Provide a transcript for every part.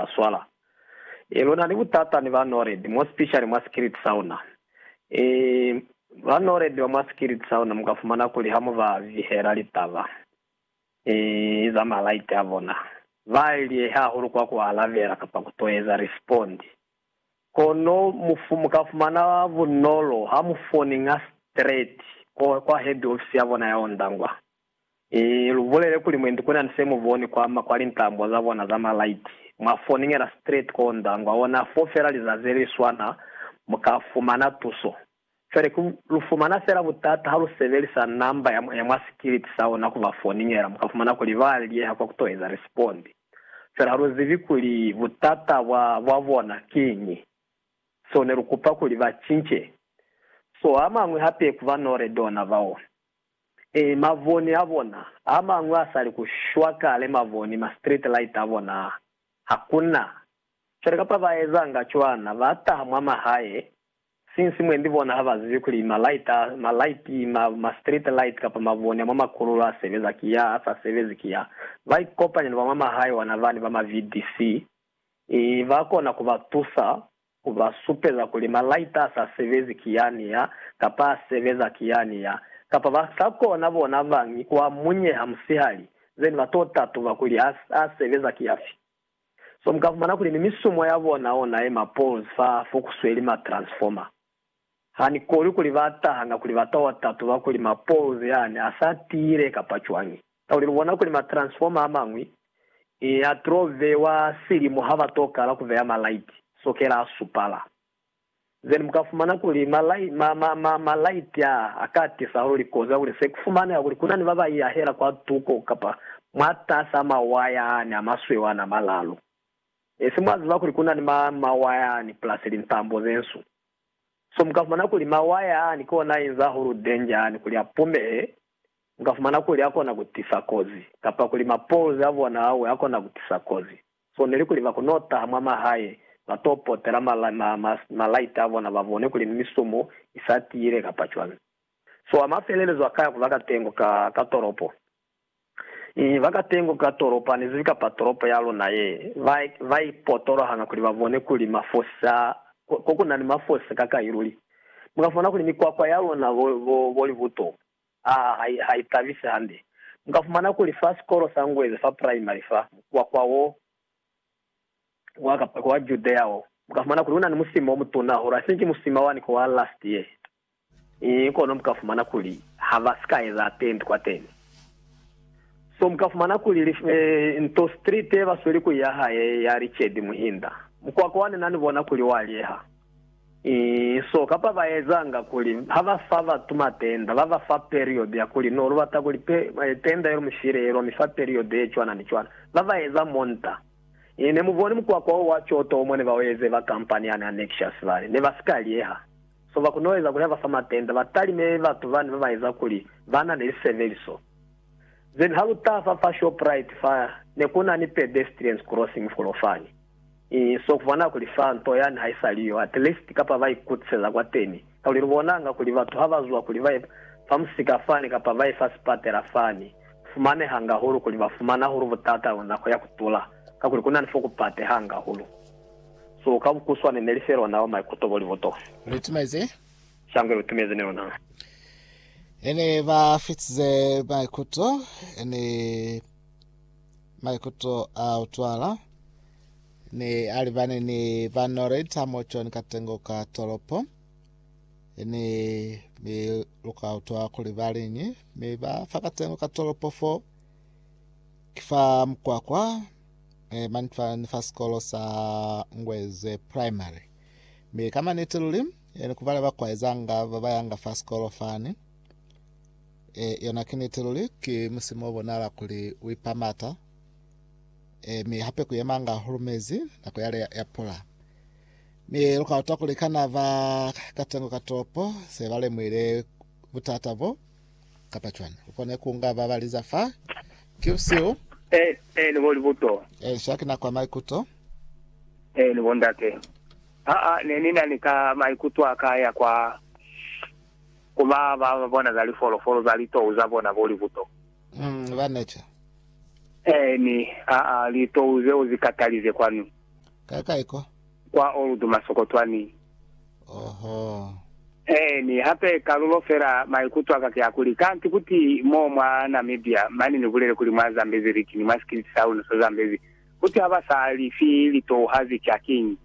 ba swala. E, luna ni butata ni ba Nored, more specially mwa sikiliti sauna. E, ba Nored ba mwa sikiliti sauna muka fumana kuli ha mu ba vihela litaba, e, eza malaiti a bona, ba lyehe hahulu kwa ku alabela kapa ku to eza respond. Kono mu, muka fumana bunolo ha mu foninga straight kwa, kwa head office ya bona ya Ondangwa. I lu bulele kuli mwendi ku na ni se mu boni kwa ma kwa lintambo za bona za malaiti. Mwa foningela straight ko Ndangwa ona fo fela lizazi li swana mu ka fumana tuso. Cwale ki lu fumana fela butata ha lu sebelisa namba ya ya mwa sikiliti sa ona ku ba foningela, mu ka fumana kuli ba liyeha kwa ku to eza respond. Cwale ha lu zibi kuli butata bwa bwa bona kiñi, so ne lu kupa kuli ba cince. So a mañwi hape ku ba Nored ona bao. Ee, mavoni a bona a mañwi a sali ku shwa kale, mavoni, ma street light a bona ha ku na cwale. Kapa ba ezanga cwana, ba taha mwa mahae, since mwendi bona ha ba zibi kuli ma light a, ma light, ma, ma street light kapa mavoni a mwa makululo a sebeza ki ya, a sa sebezi ki ya. Ba ikopanya ni ba mwa mahae wana bani ba ma VDC, i, ba kona ku ba tusa Ku ba supeza kuli malaita a sa sebezi ki yani ya, kapa a sebeza ki yani ya, kapa ba sa kona bona bañi ku a munyeha musihali, zeni ba to tatuba kuli a, a sebeza ki yafi. So mu ka fumana kuli ni misumo ya bona ona ye ma poles fa, fo ku sweli ma transformer. Ha ni koni kuli ba tahanga kuli ba ta tatuba kuli ma poles yani a sa tiile kapa cwañi. Kakuli lu bona kuli ma transformer a mañwi a to bewa silimu ha ba to kala ku beya ma light sokela a supala. Then mu ka fumana kuli ma, ma, ma, ma, ma light a a ka tisa hahulu likozi kakuli se ku fumaneha kuli ku na ni ba ba iyahela kwa tuko kapa mwatasi a ma waya yani a masweu a na malalu. E se mwa ziba kuli ku na ni ma, ma waya yani plus lintambo ze nsu. So mu ka fumana kuli mawaya ani ki ona a inza hulu danger ani kuli a pumehe, mu ka fumana kuli a kona ku tisa kozi, kapa kuli ma poles a bona a we a kona ku tisa kozi. So neli kuli ba kono taha mwa mahae, ba to potela ma, ma, ma, ma light a bona ba bone kuli ni misumu i sa tiile kapa cwani. So a ma felelezwa kaya ku ba katengo ka, ka tolopo. I ba ka tengo ka tolopani zifi kapa tolopo ya luna ye, ba, ba ipotoloha hanga kuli ba bone kuli mafosi a, ko ku na ni mafosi ka kai luli. Mu ka fumana kuli mikwakwa ya luna bo, bo, bo libuto, ha, ha, ha i tabisi hande. Mu ka fumana kuli fa sikolo sa Ngweze fa praimari fa, mukwakwa wo wa, kapa kwa Judea wo, mu ka fumana kuli una ni musima o mutuna hahulu, I think musima wani ku wa last year. I kono mu ka fumana kuli ha ba si ka eza tendi kwateni. So mu ka fumana kuli li fe nto street ye ba sweli ku ya hae ya Richard Muhinda. Mukwako wa ni na ni bona kuli wa lyeha. I so kapa ba ezanga kuli ha ba fa batu matenda ba ba fa period ya kuli no lu bata kuli pe, tenda ye lu mi file ye lwa mi fa period ye cwana ni cwana. Ba ba eza monta. I ne mu boni mukwako wo wa coto wo mo ne ba u eze ba kampani yani ya Nexious bale. Ne ba si ka lyeha. So ba kono eza kuli ha ba fa matenta ba talime batu bani ba ba eza kuli ba na ni lisebeliso. Then ha lu taha fa fa Shoprite fa ne ku na ni pedestrians crossing folo fani. Ii, so ku bona kuli fa nto yani ha i sa li yo, at least kapa ba ikutiseza kwateni. Kakuli lu bonanga kuli batu ha ba zwa kuli ba ye fa musika fani kapa ba ye fa sipatela fani, ku fumanehanga hahulu kuli ba fumana hahulu butata nako ya ku tula, kakuli ku na ni fo ku pateha hanga hahulu. Su ka bukuswane ne li fe lona wa maikuto bo libotofi. Lu tumezi. Shangwe lu tumezi ni lona. E ne ba fitize maikuto, e ne maikuto a utwala, ne a libane ni ba Noreit a mo John katengo ka tolopo. E ne mi lu ka utwa kuli ba liñi, mi ba fa katengo ka tolopo fo. Ki fa mukwakwa. eh, mani fa, ni fa sikolo sa Ngweze Primary. Mi ka maniti luli, eh, ni kubale ba kwaezanga ba ba yanga fa sikolo fani. Eh, yona ki niti luli, ki musimo o bonala kuli u ipamata. Eh, mi hape ku yemanga hulumezi nako yale ya, ya pula. Mi lu ka utwa kuli kana ba katengo ka toropo se ba lemuile butata bo Kapa cwani ukona kunga baba liza fa ki busihu? E, e, ni bo libuto. E, sha ki na kwa maikuto. E, ni bo ndate. Ha, ha, ne ni na ni ka maikuto a ka ya kwa, ku ba ba bona za lifolofolo za litou za bona bo libuto. Mm, ba neca. E, ni, ha, ha, litou zeo zi katalize kwanu. Kai, kai ko. kwa Old Masokotwani. Oho. Eeni, hape kalulo fela maikuto aka ki akuli, kanti kuti mo mwa Namibia, mane ni bulele kuli mwa Zambezi Region, mwa sikiliti sa luna sa Zambezi, kuti ha ba sa li fi litouhazi ki hakiñi.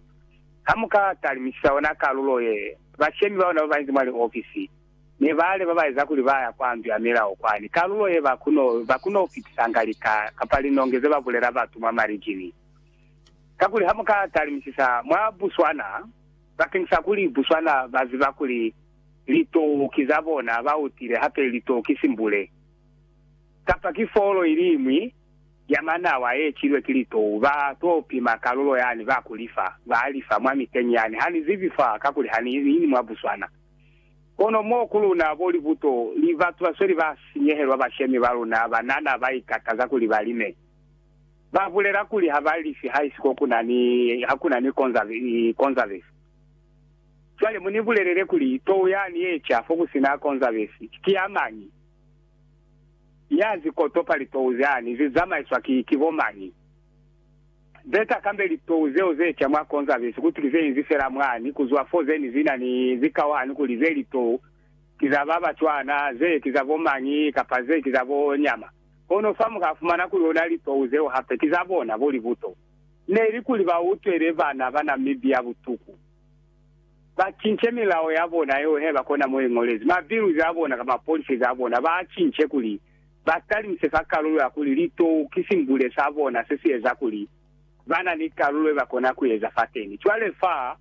Ha mu ka talimisisa yona kalulo ye, bashemi ba luna ba banzi mwa liofisi ne ba leba ba eza kuli ba ya kwa ndu ya milao kwani, kalulo ye ba kono, ba kono fitisa nga lika kapa linonge ze ba bulela batu mwa marijini. Kakuli ha mu ka talimisisa mwa Buswana, bakeng sa kuli Buswana ba ziba kuli litou ki za bona, ba utile hape litou ki simbule, kapa ki folo iliñwi ya manawa ye kilwe ki litou, ba to pima kalulo yani ba ku lifa, ba li fa mwa miteñi yani. Ha ni zibi fa, kakuli ha ni ni mwa Buswana. Kono mo ku luna, bo libuto li, batu ba sweli ba sinyehelwa, bashemi ba luna, banana ba ikataza kuli ba lime. Ba bulela kuli ha ba lifi haisiko ku na ni, ha ku na ni konzavesi. Cwale mu ni bulelele kuli tou yani ye ca fo ku si na konzavesi ki ya mañi? Ya zi kotopa litou zani zi zamaiswa ki, ki bo mañi? Beta kambe litou zeo ze ca mwa konzavesi kuti ki ze inzi fela mwani ku zwa fo ze ni zi na ni zikao hani kuli ze litou ki za ba ba cwana, ze ki za bo mañi, kapa ze ki za bo nyama. Kono fa muka fumana kuli ona lipeu zeo hape ki za bona bo libuto. Neli kuli ba utwele bana ba Namibia butuku, ba cince milao ya bona yeo he ba kona mo ingolezi, ma bills a bona kamba policies a bona ba a cince kuli ba talimise fa kalulo ya kuli litou ki simbule sa bona se si eza kuli ba na ni kalulo ye ba kona ku eza fateni. Cwale fa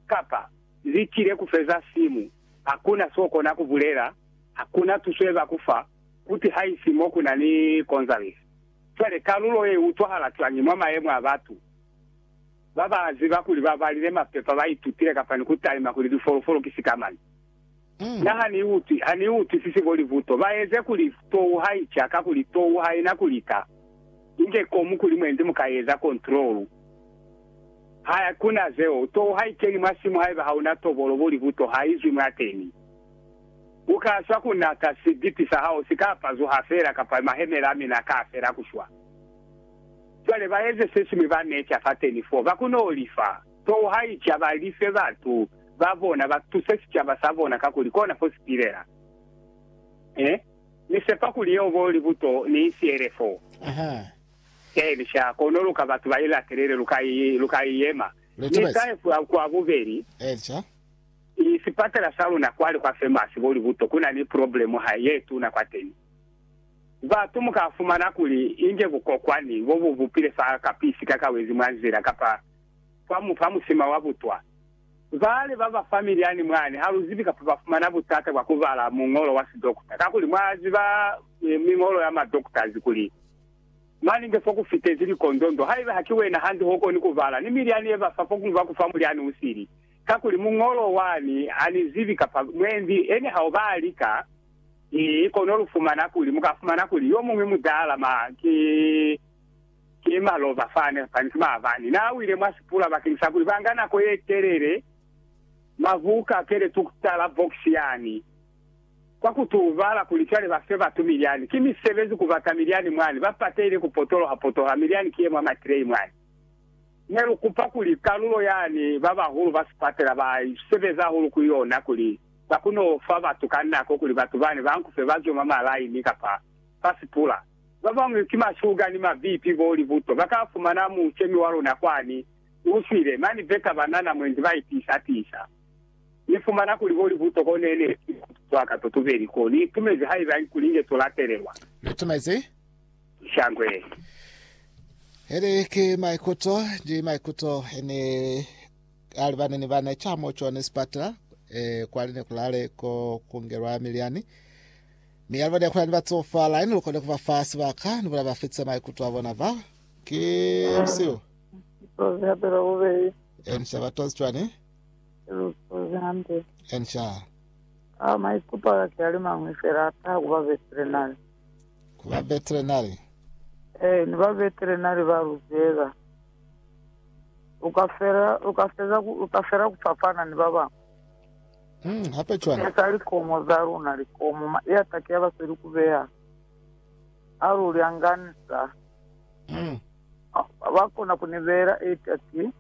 kapa zi tile ku feza simu, hakuna so kona ku bulela, hakuna tuso ye ba ku fa. Kuti haisi mo ku na ni Gonzalez, cwale kalulo ye utwahala cwañi mwa mayemo a batu? Ba ba ziba kuli ba balile mapepa ba itutile kapa ni ku talima kuli lifolofolo ki sikamañi. Na ha ni utwi, ha ni utwisisi bo libuto. Ba eze kuli tou ha i ca, kakuli tou ha i na ku lika. Inge komu kuli mwendi mu ka eza kontrolu. Ha ku na zeo. Tou ha i keni mwa simu haiba ha u na tobolo bo libuto, ha i zwi mwateni. U ka swa ku na ka sibipi sa hao si ka pazuha fela kapa mahemela a mina ka fela ku shwa. Cwale ba eze se siñwi ba neca fateni fo, ba kono li fa. Tou ha i ca ba life batu ba bona, ba tuse sicaba sa bona kakuli kona fo si pilela. Eh, Ni sepa kuli yeo bo libuto ni i siele fo. Eeni, sha, kono lu ka batu ba i latelele, lu ka i, lu ka i yema. Ni sa ye kwa bubeli. I sipatala sa luna kwali kwa famous bo Libuto kuna ni problem ha ye tuna kwateni. Batu muka fumana kuli inge bukokwani bo bu bupile fa kapisi ka kawezi mwa nzila kapa fa mu fa musima wa butwa. Bale ba ba family yani mwani ha lu zibi kapa ba fumana butata bwa ku bala muñolo wa sidokta kakuli mwa ziba miñolo ya ma doctors kuli mani nge fo ku fitezi likondondo haiba ha ki wena hande ho koni ku bala ni milyani ye ba fa fo ku ba ku fa mulyani u sili. Kakuli muñolo wani ani zibi kapa mwendi, ene hao ba lika, ki kono lu fumana kuli, mu ka fumana kuli yo muñwi mutala ma, ki, ki maloba fani, fani ki maabani. Na wile mwa sipula bakeng sa kuli ba nga nako ye telele, ma buka kele tu kutala box yani, kwa ku tu bala kuli cwale ba fe batu milyani. Ki misebezi ku bata milyani mwani, ba pateile ku potoloha potoha milyani ki ye mwa matreyi mwani. Ne lu kupa kuli kalulo yani ba bahulu ba sipatela ba sebeza hahulu ku yona kuli ba kone u fa batu ka nako kuli batu bani ba nkufe ba zwe mwa malaini kapa fa sipula. Ba bañwi ki mashuga ni mabipi bo li buto. Ba ka fumana mucemi wa luna kwani u swile. Mani beta ba na na mwendi ba itiisa tiisa. Ni fumana kuli bo li buto ko ne ne ki mwa tuto wa ka totubeli ko ni itumezi haiba kuli inge to latelelwa. Ni itumezi shangwe. Eli ki maikuto ni maikuto ene alibane ni bana chamo chone sipatala e kwali ne kulale ko kungelwa miliani mi alibane kula ni batsofa line lukone kuba fa sibaka ni bona bafitse maikuto a bona ba ki usiu Lusozi hape lwa bubeli. ensha batozi chwane Lusozi hampe. ensha Ao maikuto aka ke ali mañwi fela ataha kuba besile nali. Ku ba veterinary? Ee, ni ba veterinary ba luzela. U ka fela, u ka feza, u ka fela ku fapana ni ba bañwi. Mm, hape cwani? Sesa likomo za luna, likomo, ma, i atake ya basweli ku beha. Ha lu lyanganisa, mm. ba kona ku ni beela i atake.